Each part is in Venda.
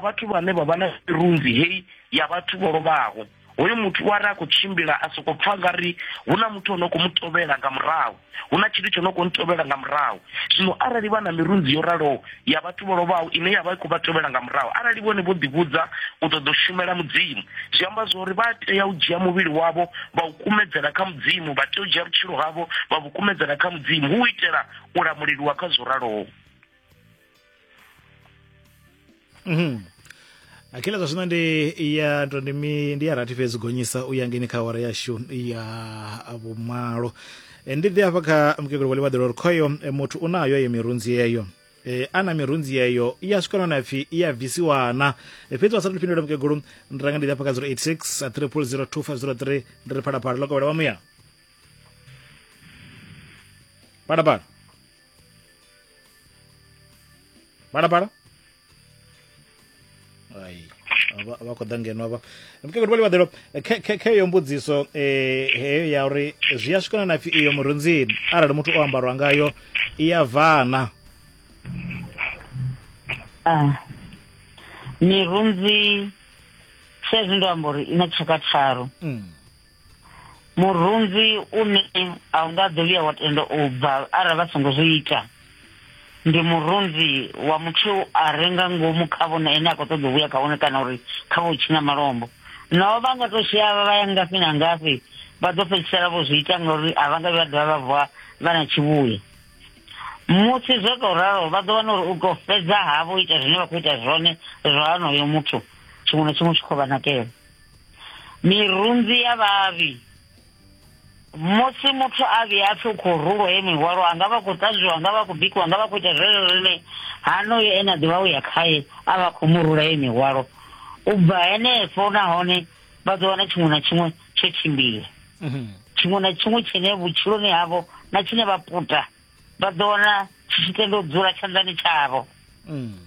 vhathu vhane vha vha na mirunzi heyi ya vhathu vho lovhaho hoyo muthu wa ri a khou tshimbila a soko pfa nga ri hu na muthu o no khou mu tovhela nga murahu hu na tshithu tsho no khou ntovhela nga murahu zwino arali vha na mirunzi yo raloho ya vhathu vho lovhaho ine ya vha i khou vha tovhela nga murahu arali vhone vho ḓivhudza u ṱoḓa u shumela mudzimu zwi amba zwa uri vha tea u dzhia muvhili wavho vha u kumedzela kha mudzimu vha tea u dzhia vhutshilo havho vha vhu kumedzela kha mudzimu hu u itela u lamuleliwa kha zwo raloho Mhm. akhila zwa zwino ndi ya ndo ndi mi- ndi ya rathi fhedzi gonyisa u ya ngeni kha awara yashu ya vhumalo Eh, ndi ḓi hafha kha mukegulu wa ḽivhaḓelo uri khoyo eh, muthu u nayo ye mirunzi yeyo Eh, ana mirunzi yeyo i ya swika nona pfi i ya bvisiwana Eh, fhedzi wa sa tou fhindula mukegulu ndi ranga ndi ḓi hafha kha 086 a 300 2503 ndi ri phalaphala ḽo kovhela wa muya phalaphala Para, para. Ai. Ava- Ava khou ḓa ngeno avha mukegulu vhali vhaḓelo khe- khe- kheyo mbudziso eh, heyo ya uri zwi a swikana na pfi iyo murunzini arali muthu o ambarwa ngayo i ya vana Ah. mirunzi saizwi ndo amba uri i na tshaka tharu Mm. murunzi une a u nga ḓo vhuya wa tenda u bva arali vha songo zwi ita ndi murunzi wa muthu a re nga ngomu kha vhone ene a khou ṱoḓa u vhuya kha vhone kana uri kha vho tshina malombo naho vha nga tou shaya vha ya ngafhi na ngafhi vha ḓo fhedzisela vho zwi ita ngauri a vha nga vha dovha vha vuwa vha na tshivhuya musi zwo tou ralo vha ḓo wana uri u tou fhedza havho ita zwine vha khou ita zwone zwa honoyo muthu tshiṅwe na tshiṅwe tshi khou vha nakela mirunzi ya vhavhi musi muthu a vhuya a pfi u khou rulwa ye mihwalo a nga vha khou ṱanzwiwa nga vha khou bikiwa nga vha khou ita zwezwo zwine hanoyo ene a ḓivha u ya khaye a vha khou mu rula ye mihwalo u bva henefho nahone vha ḓo wana tshiṅwe na tshiṅwe tsho tshimbila mhm. tshiṅwe na tshiṅwe tshine vhutshiloni havho na tshine vha puta vha ḓo wana tshi tshi tenda u dzula tshanḓani tshavho mm.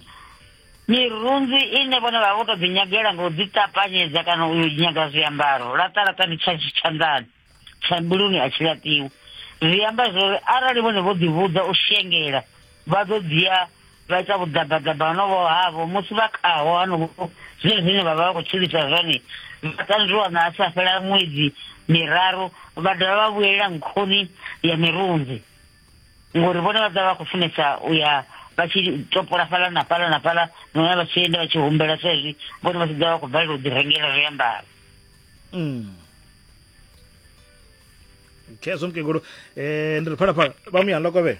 mirunzi ine vhone vha vha vho to ḓi nyagela ngo ḓi tapanyedza kana u nyaga zwiambaro laṱalaṱa ndi tsha tshanḓani tsha mbuluni a tshi laṱiwa zwi amba zwori arali vhone vho ḓi vhudza u shengela vha ḓo dzhia vha ita vhuḓabaḓaba honovho havho musi vha khaho honovho zwine zwine vha vha vha khou tshilisa zwone vha tanzwiwa na a sa fhela ṅwedzi miraru vha dovha vha vhuyelela nkhuni ya mirunzi ngori vhone vha ḓa vha khou funesa u ya vha tshi topola fhala na fhala na fhala nona vha tshi enda vha tshi humbela sa izwi vhone vha tshi ḓa vha khou balelwa u ḓi rengela zwiambaro mm. khezwo mukegulu um eh, ndi ri phalaphala vha muyanḓa kovhela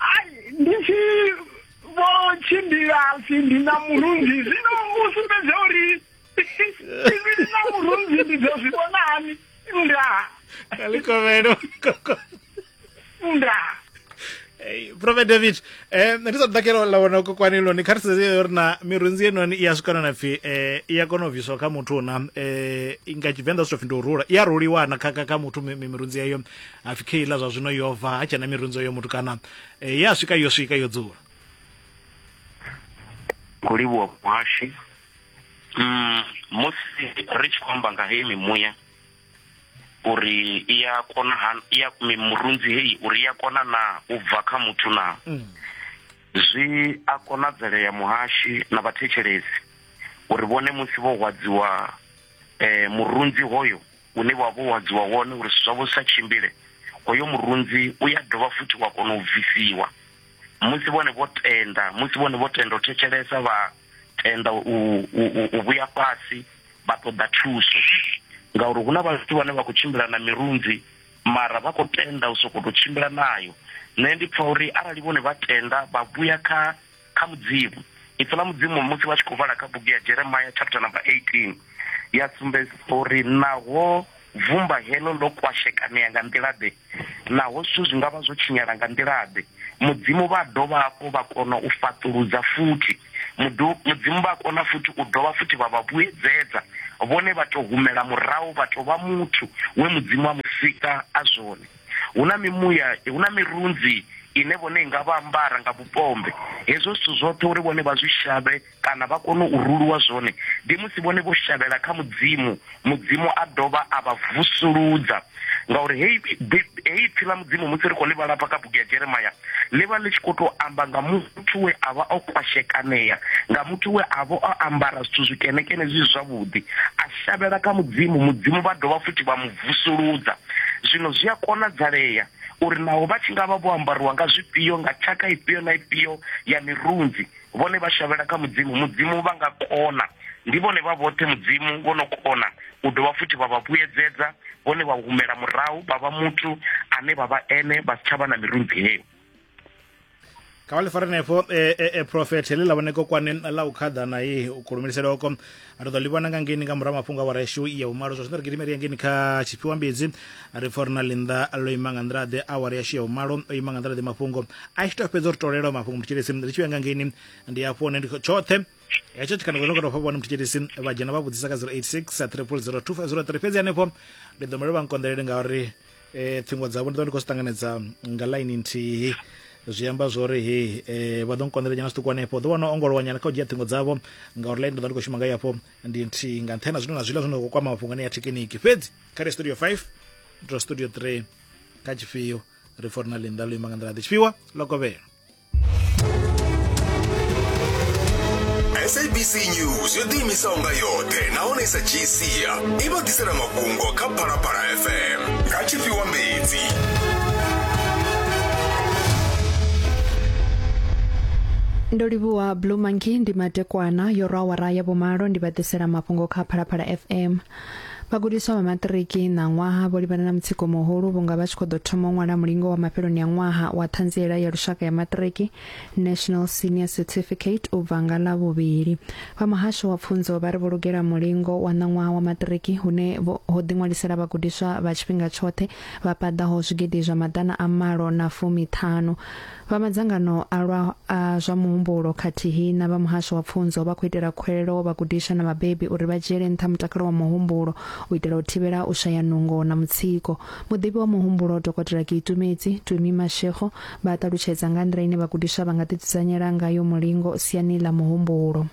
ai ndi tshi vho tshimbila si ndi na murunzi zwino u sumbedza uri ndi na murunzi ndi dzo zwi vhona hani nda kalikovhelo nda prophet david um ndi sa ḓakela ḽa wana kokwani loni kha ri sedze yo ri na mirunzi yenoni i ya swikana na pfhi um i ya kona u bviswa kha muthu na um nga tshivenḓa zwi to pfhi ndi u rula i ya ruliwa na kha kha kha muthu mi- mi- mirunzi yeyo ha pfi kheila zwa zwino yo bva ha tshena mirunzo yo mutukana e, ye a swika yo swika yo dzula khou livhuwa muhashi mm, musi ri tshi khou amba nga heyi mimuya uri i ya kona han- i ya murunzi heyi uri i ya kona na u bva kha muthu na Mm. zwi a konadzelea muhashi na vhathetshelesi uri vhone musi vho hwadziwa eh, murunzi hoyo une wa vha wo hadziwa wone uri zwithu zwavho zwi sa tshimbile, hoyo murunzi u ya dovha futhi wa kona u bvisiwa. Musi vhone vho tenda, musi vhone vho tenda u thetshelesa, vha tenda u, u, u, u vhuya fhasi, vha ṱoḓa thuso. Ngauri hu na vhathu vhane vha khou tshimbila na mirunzi, mara vha khou tenda u sokou tou tshimbila nayo. Nṋe ndi pfa uri arali vhone vha tenda vha vhuya kha kha Mudzimu. Ipfi ḽa Mudzimu musi vha tshi khou vhala kha bugu ya Jeremia chapter number 18 ya sumbedzisa uri naho vumba heḽo ḽo kwashekanea nga nḓila-ḓe, naho zwithu zwi nga vha zwo tshinyala nga nḓila-ḓe, Mudzimu vha a dovha hafhu vha kona u fhaṱuludza futhi. Mudu, Mudzimu vha a kona futhi u dovha futhi vha vha vhuedzedza, vhone vha tou humela murahu vha tou vha muthu we Mudzimu a mu sika a zwone. Hu na mimuya, hu na mirunzi ine vhone i nga vha ambara nga vhupombe. Hezwo zwithu zwoṱhe uri vhone vha zwi shavhe kana vha kone u ruluwa zwone, ndi musi vhone vho shavhela kha Mudzimu, Mudzimu a dovha a vha vusuludza. Ngauri heyi heyi ipfi ḽa Mudzimu musi ri khou ḽi vhala hafha kha bugu ya Jeremia, ḽi vha ḽi tshi khou tou amba nga mu. muthu we a vha o kwashekanea nga muthu we a vha o ambara zwithu zwikenekene zwi zwavhuḓi a shavhela kha mudzimu mudzimu vha dovha futhi vha mu vusuludza zwino zwi a konadzalea uri naho vha tshi nga vha vho ambariwa nga zwifhio nga tshaka ifhio na ifhio ya mirunzi vhone vha shavhela kha mudzimu mudzimu vha nga kona ndi vhone vha vhoṱhe mudzimu vho no kona u dovha futhi vha vha vhuyedzedza vhone vha humela murahu vha vha muthu ane vha vha ene vha si tsha vha na mirunzi heyo kha vha ḽi fare nefho e, e, e, profet heḽi ḽa vhone kokwane ḽa u khaḓa na ye u khulumilisele oko a ri ḓo ḽi vhona nga ngeni nga murahu mafhungo a wareshu ya umalo zwa zwino ri gidimeri ya ngeni kha tshifhiwa mbidzi ri pfa uri na linda ḽo ima nga nḓila ḓe awara yashu ya umalo o ima nga nḓila ḓe mafhungo a tshi tou fhedza uri tolelwa mafhungo mutshilisi ri tshi vhuya nga ngeni ndi hafho hone ndi tshoṱhe hetsho tshikana zwo no kona u fha vhone mutshitshitshisi vha dzhena vha vhudzisa ka 086 300 2503 fhedzi hanefho ndi ḓo mele vha nkonḓelele ngauri e, ṱhingo dzavho ndi ḓo ndi khou zwi ṱanganedza nga ḽaini nthihi zwi amba zwori he eh, vha ḓo nkonḓela nyana zwiṱuku hanefho ḓo wana ongolowa nyana kha u dzhia ṱhingo dzavho ngauri ḽaini ndo ndi khou shuma nga yafho ndi nthihi nga nṱhena zwino na zwiḽa zwino khou kwama mafhungoni ya thekiniki fhedzi kha ri studio 5 to studio 3 kha tshifhio ri forinalini ḽa luima nga nḓila ḓi tshifhiwa ḽo kovhela sabc news yo ḓiimisaho nga yoṱhe nahone i sa dzhii sia i vha ḓisela mafhungo kha phalaphala fm nga tshifhiwa mbedzi ndo livhuwa blue monkey ndi matekwana yo rwa awara ya vhumalo ndi vha ḓisela mafhungo kha phalaphala fm Vhagudiswa vha maṱiriki ṋaṅwaha vho livhana na mutsiko muhulu vhunga vha tshi khou ḓo thoma u ṅwala mulingo wa mafheloni a ṅwaha wa ṱhanziela ya lushaka ya maṱiriki National Senior Certificate u bva nga ḽa vhuvhili. Vha muhasho wa pfunzo vha ri vho lugela mulingo wa ṋaṅwaha wa maṱiriki hune ho ḓiṅwalisela vhagudiswa vha tshifhinga tshoṱhe vha paḓaho zwigidi zwa maḓana a malo na fumiṱhanu. Vha madzangano a lwa a zwa muhumbulo khathihi na vha muhasho wa pfunzo vha khou itela khuwelelo vhagudiswa na vhabebi uri vha dzhiele nṱha mutakalo wa muhumbulo u itela u thivhela u shaya nungo na mutsiko. Muḓivhi wa muhumbulo Dokotela Kiitumedzi Tumi Mashego vha a ṱalutshedza nga ha nḓila ine vhagudiswa vha nga ḓidzudzanyela ngayo mulingo siani ḽa muhumbulo.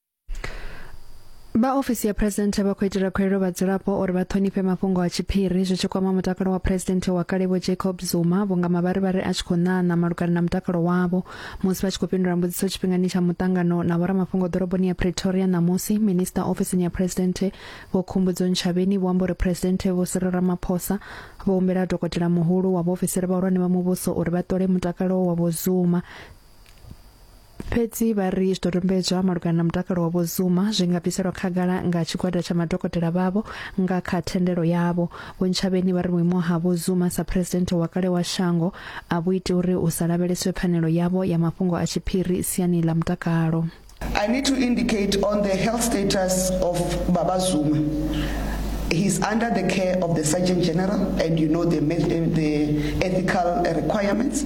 vha ofisi ya phuresidennde vha khou itela khuelo vhadzulapo uri vha ṱhonifhe mafhungo a tshiphiri zwi tshi kwama mutakalo wa phuresidennde wa kale vho jacob zuma vhunga mavharivhari a tshi khou ṋaṋa malugana na mutakalo wavho musi vha tshi khou fhindula mbudziso tshifhingani tsha muṱangano na vhoramafhungo ḓoroboni ya pretoria ṋamusi minista ofisini ya phuresidennde vho khumbudzo nshavheni vho amba uri phuresidennde vho siri ramaphosa vho humbela dokotela muhulu wa vhaofisiri vhahulwane vha muvhuso uri vha ṱole mutakalo wa vho zuma fhedzi vha ri zwidodombedzwa malugana na mutakalo wa vhozuma zwi nga bviselwa khagala nga tshigwada tsha madokotela vhavho nga kha thendelo yavho vhontshavheni vha ri vhuimo ha vhozuma sa president wa kale wa shango a vhu iti uri u sa lavheleswe pfanelo yavho ya mafhungo a tshiphiri siani ḽa mutakalo I need to indicate on the health status of Baba Zuma. He's under the care of the Surgeon General and you know the, the ethical requirements.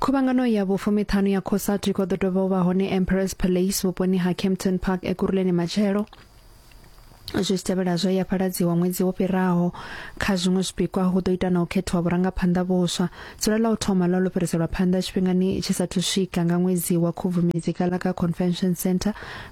Khuvhangano ya vhufumiṱhanu ya Cosatu i khou ḓo dovha u vha hone Emperors Palace vhuponi ha Kempton Park Ekurhuleni matshelo zwi si tevhela zwe ya fhaladziwa ṅwedzi wo fhiraho kha zwiṅwe zwipikwa hu ḓo ita na u khethiwa vhurangaphanḓa vhuswa dzula ḽa u thoma ḽa ḽo fhiriselwa phanḓa tshifhingani tshi sathu swika nga ṅwedzi wa khubvumedzi kala kha convention center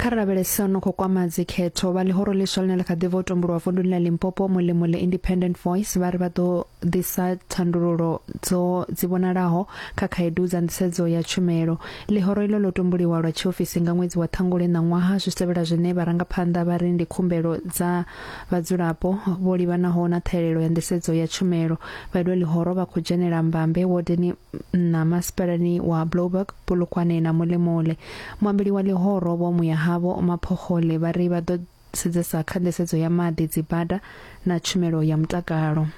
kha ri lavhelese no khou kwama dzikhetho vha ḽihoro ḽiswa ḽine ḽa kha ḓi vha u tombolowa vunduni ḽa limpopo mulimo le independent voice vha ri vha ḓo ḓisa thandululo dzo dzi vhonalaho kha khaedu dza nḓisedzo ya tshumelo ḽihoro ilo ḽo tomboliwa lwa tshiofisi nga ṅwedzi wa ṱhangule ṋaṅwaha zwi tevhela zwine vharangaphanḓa vha ri ndi khumbelo dza Vhadzulapo vho livhanaho na ṱhahelelo ya nḓisedzo ya tshumelo vha ilwe ḽihoro vha khou dzhenela mbambe wodeni na masipalani wa Blouberg, Polokwane na Molemoole. Muambeli wa ḽihoro Vho Muyahavho Maphokgole vha ri vha ḓo sedzesa kha nḓisedzo ya maḓi, dzibada na tshumelo ya mutakalo.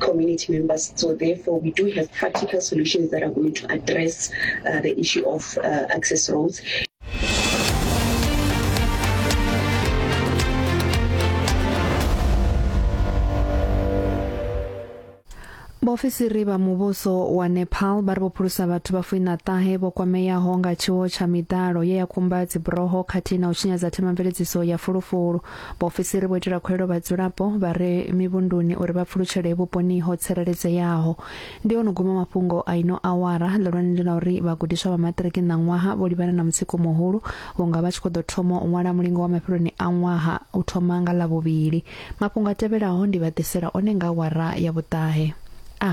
community members. So therefore, we do have practical solutions that are going to address uh, the issue of uh, access roads. vhaofisiri vha muvhuso wa nepal vha ri vho phulusa vhathu vha fuina ṱahe vho kwameaho nga tshiwo tsha miḓalo ye ya kumba dziburoho khathihi na u tshinyadza themamveledziso ya fulufulu Vhaofisiri vho itela khuwelo vhadzulapo vha re mivhunduni uri vha pfulutshele vhuponi ho tsireledzeaho. Ndi ono guma mafhungo a ino awara. Ḽihulwane ndi ḽa uri vhagudiswa vha maṱiriki ṋaṅwaha vho livhana na mutsiko muhulu vhunga vha tshi khou ḓo thoma u ṅwala mulingo wa mafheloni a ṅwaha u thoma nga Ḽavhuvhili. Mafhungo a tevhelaho ndi vha ḓisela one nga awara ya vhuṱahe. A.